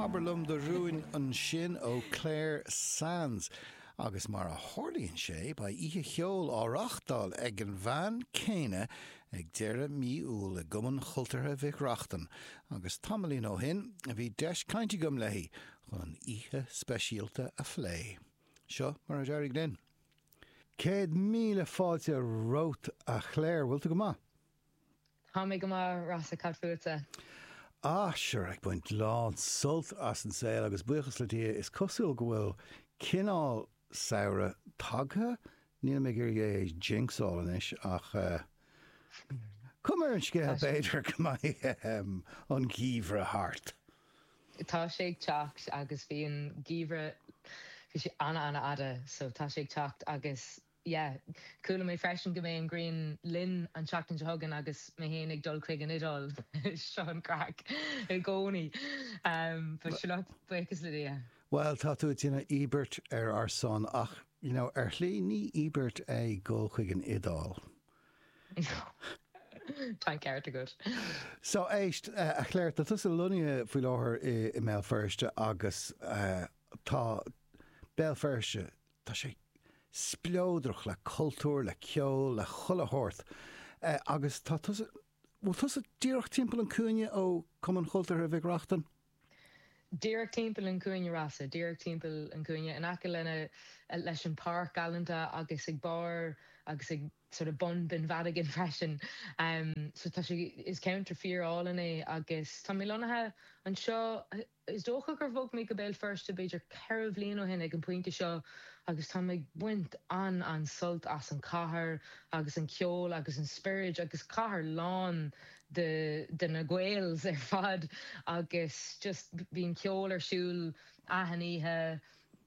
Abair liom do rúin ansin ó Clare Sands. Agus mar a tharlaíonn sé, beidh oíche cheoil á reáchtáil ag an bhean céanna ag deireadh mí Iúil i gCumann Chultúrtha Mhic Reachtain, agus tamaillín ó shin bhí deis caint agam léi chun an oíche speisialta a phlé. Seo mar a d'éirigh linn. Céad míle fáilte romhat a Chlare, bhfuil tú go maith? Tá mé go maith, Rossa, cad fútsa? Ah, sure, ag baint lán sult as an saol agus buíochas le Dia, is cosúil go bhfuil cineál samhradh tagtha, nílim ag iarraidh é a jinxáil anois ach eh. cuma ar an scéal b'fhéidir go mbeidh an geimhreadh thart. Tá sé ag teacht agus bhí an geimhreadh, bhí sé ana-ana-fhada so tá sé ag teacht agus yeah. Chuala mé freisin go mbeidh an ghrian linn an tseachtain seo chugainn agus mé féin ag dul chuig an Iodáil. Seo an craic i gcónaí. But sure look, buíochas le Dia. Bhuel, tá tú ag déanamh íobairt ar ár son ach, you know, ar shlí ní íobairt é dhul chuig an Iodáil. Tá an ceart agat. So, éist, a Chlare, tá tusa lonnaithe faoi láthair i mBéal Feirste agus tá Béal Feirste Tá sé spleodrach le cultúr, le ceol, le chuile shórt. Agus tá tusa, bhfuil tusa díreach timpeall an cúinne ó Cumann Chultúrtha Mhic Reachtain? Díreach timpeall an cúinne, a Rossa, díreach timpeall an cúinne, in aice leis an pháirc galánta agus ag barr agus ag sort of bun Bheann Mhadigan freisin. So tá sé, is ceantar fíor-álainn é agus tá mé lonnaithe anseo, Is dócha gur bhog mé go Béal Feirste b'fhéidir ceithre bhliain ó shin ag an bpointe seo agus táim ag baint an-an-sult as an cathair agus an ceol agus an spiorad agus cathair lán de de na Gaels ar fad agus just bíonn ceol ar siúl achan oíche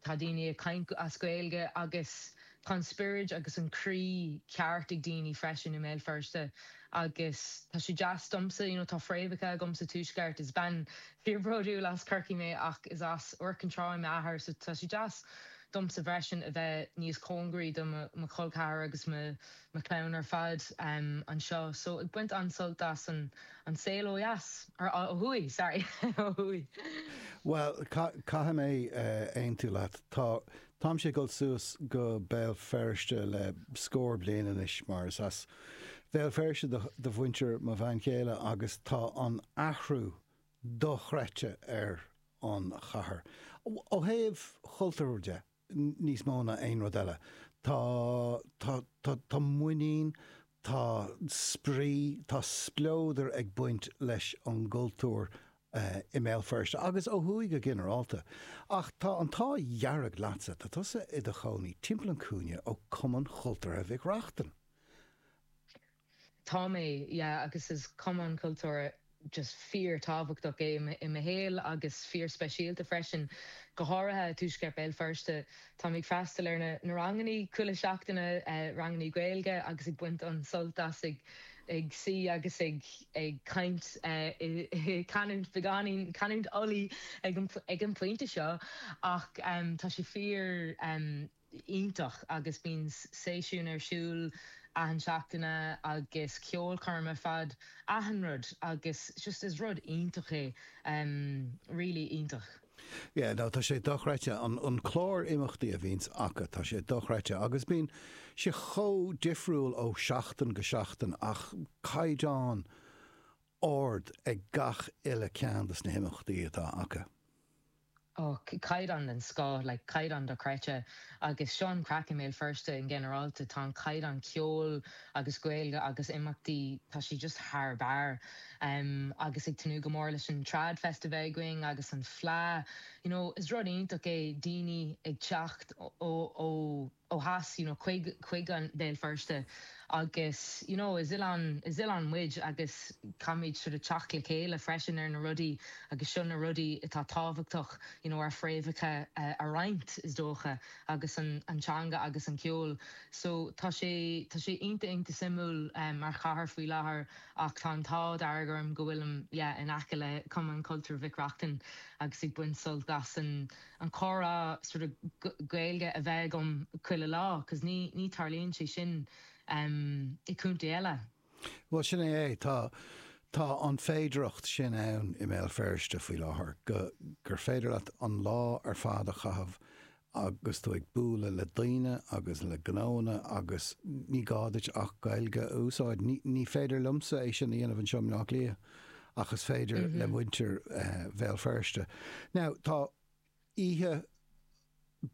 Tá daoine ag caint as Gaeilge agus tá an spiorad agus an croí ceart ag daoine freisin i mBéal Feirste agus tá sé deas domsa, you know, tá fréamhacha agam sa Tuaisceart, is bean fíorbhródúil as Corcaigh mé ach is as Iúr Cinn Trá é m'athair so tá sé deas domsa freisin a bheith níos cóngaraí do mo chol ceathrair agus mo chlann ar fad anseo so ag baint an-sult as an saol ó dheas, or ó thuaidh, sorry, ó thuaidh. Bhuel, caithfidh mé aontú leat. Tá, táimse ag dul suas go Béal Feirste le scór bliain anois mar is as Béal Feirste do, do mhuintir mo bhean chéile agus tá an t-athrú dochreidte ar an chathair, ó thaobh chultúir de. níos mó ná aon rud eile. Tá, tá, tá, tá muinín, tá spraoi, tá spleodar ag baint leis an gcultúr i mBéal Feirste agus ó thuaidh go ginearálta. Ach tá an t-ádh dhearg leatsa, tá tusa i do chónaí timpeall an chúinne ó Chumann Chultúrtha Mhic Reachtain. Tá mé, yeah, agus is cumann cultúrtha just fíorthábhachtach é i mo shaol agus fíorspeisialta freisin, go háirithe i dtuaisceart Béal Feirste. Táim ag freastal ar na ranganna chuile seachtain, ranganna Gaeilge, agus ag baint an-sult as, ag suí agus ag caint i canúint beagáinín, canúint Uladh ag an bpointe seo, ach tá sé fíor. iontach agus bíonn seisiúin ar siúl achan seachtain agus ceolchoirm ar fad, achan rud agus just is rud iontach é really iontach. Yeah no tá sé dochreidte an an clár imeachtaí a bhíonns acu tá sé dochreidte agus bíonn sé chomh difriúil ó sheachtain go seachtain ach caighdeán ard ag gach uile ceann dos na himeachtaí atá acu. Ó, caighdeán den scoth, like, caighdeán dochreidte. Agus seo an chraic i mBéal Feirste in ginearálta, tá an caighdeán ceoil agus Gaeilge agus imeachtaí, tá sé just thar barr. Agus ag tnúth go mór leis an TradFest a bheith againn agus an Fleadh. You know, is rud iontach é daoine ag teacht ó, ó, ó theas, you know chuig, chuig Béal Feirste agus you know is oileán, is oileán muid agus caithfimid sort of teacht le chéile freisin ar na rudaí agus seo na rudaí atá tábhachtach you know ár fréamhacha a roinnt is dócha agus an, an teanga agus an ceol so tá sé, tá sé iontach, iontach suimiúil mar chathair faoi láthair ach tá an t-ádh dearg orm go bhfuilim yeah in aice le Cumann Cultúir Mhic Reachtain agus ag baint sult as an an comhrá sort of Gaeilge a bheith agam chuile lá cos ní ní tharlaíonn sé sin i gcontae eile. Bhuel, sin é é. Tá, tá an fhéidearthacht sin ann i mBéal Feirste faoi láthair, go, gur féidir leat an lá ar fad a chaitheamh agus tú ag bualadh le daoine agus le gnóanna agus ní gá duit ach Gaeilge a úsáid. Ní, ní féidir liomsa é sin a dhéanamh anseo i mBleá Cliath. ach is féidir le muintir Bhéal Feirste. Now, tá oíche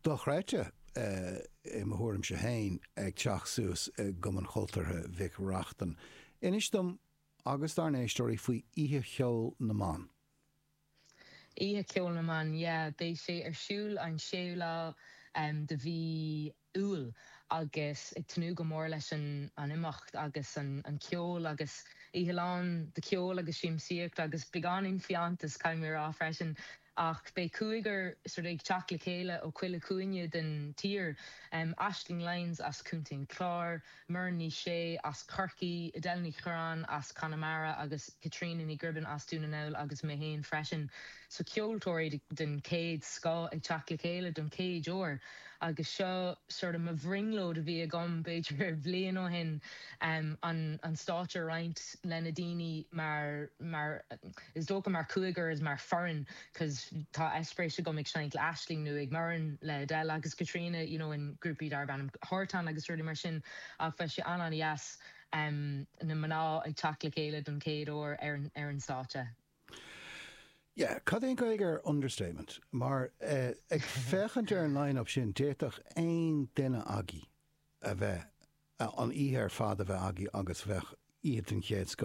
dochreidte, i mo thuairimse féin, ag teacht suas i gCumann Chultúrtha Mhic Reachtain. Inis dom agus dár n-éisteoirí faoi Oíche Cheoil na mBan. Oíche Cheoil na mBan, yeah. Beidh sé ar siúl an séú lá de mhí Iúil agus ag tnúth go mór leis an imeacht agus an ceol agus oíche lán de cheol agus siamsaíocht agus beagáinín fiántas, caithfidh mé a rá freisin. Ach beidh cúigear sort of ag teacht le chéile ó chuile chúinne den tír, Aisling Lyons as Contae an Chláir, Muireann Ní Shé as Corcaigh, Edel Ní Chuireáin as Conamara agus Caitríona Ní Ghribin as Dún na nGall agus mé féin freisin. So ceoltóirí den chéad scoth ag teacht le chéile don chéad uair agus seo sort of mo bhrionglóid a bhí agam b'fhéidir bhliain ó shin an stáitse a roinnt le na daoine mar, mar is dócha mar chúigear is mar foireann. 'cos tá eispéiris agam ag seinnt le Aisling nó ag Muireann le Edel agus Caitríona, you know, in grúpaí darb ainm Horton agus rudaí mar sin, ach bheadh sé an-an-dheas na mná ag teacht le chéile don chéad uair ar an stáitse. Yeah, cad é an Gaeilge ar 'understatement'? Mar, ag féachaint ar an line-up sin, d'fhéadfadh aon duine agaibh a bheith, an oíche ar fad a bheith agaibh agus bheadh oíche den chéad scoth.